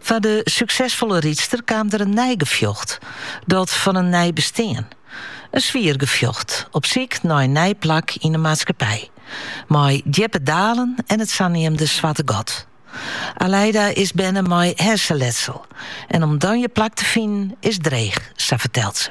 Foar de suksesfolle rydster kaam der in nij gefjocht, dat fan in nij bestean. In swier gefjocht, op syk nei in nij plak yn de maatskippij, mei djippe dalen en it saneamde swarte gat. Aleida is berne mei herseletsel en om dan je plak te finen is dreech, sa fertelt se.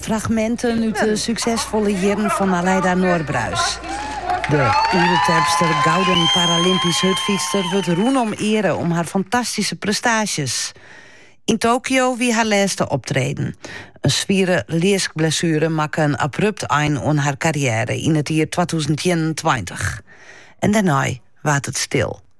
Fragminten út de suksesfolle jierren fan Aleida Norbruis. De Oerterpster gouden paralympysk hurdfytster wurdt rûn om eare om har fantastyske prestaasjes. Yn Tokio wie har lêste optreden. In swiere leaskblessuere makke in abrupt ein oan har karriêre yn it jier twatûzen ienentweintich. En dêrnei waard it stil.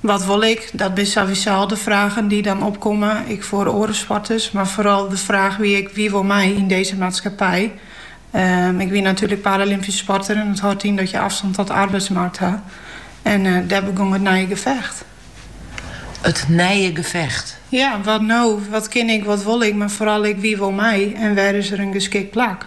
Wat wol ik? Dat binne sowieso al de fragen dy't dan opkomme, ek foar oare sporters. Mar foaral de fraach wie ek, wie wol my yn dizze maatskippij? Ik wie natuerlik paralympysk sporter en dat hâldt yn dat je afstand tot de arbeidsmarkt ha. En dêr begong it nije gefecht. It nije gefecht? Ja, wat no? Wat kin ik, wat wol ik, mar foaral ek wie wol my en wêr is der in geskikt plak?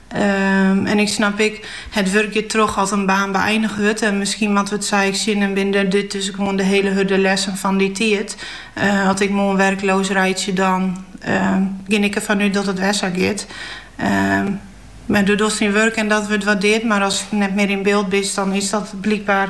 En ik snap ek, it wurk giet troch as in baan beëinich wurdt. En miskien moatte we it sa ek sjen en binne dit dus gewoan de hiele hurde lessen fan dy tiid. As ik moarn werkloos reitsje dan gean ik derfan út dat it wer sa giet. Mar do dochst dyn wurk en dat wurdt waardeard. Mar ast net mear yn byld bist dan is dat blykber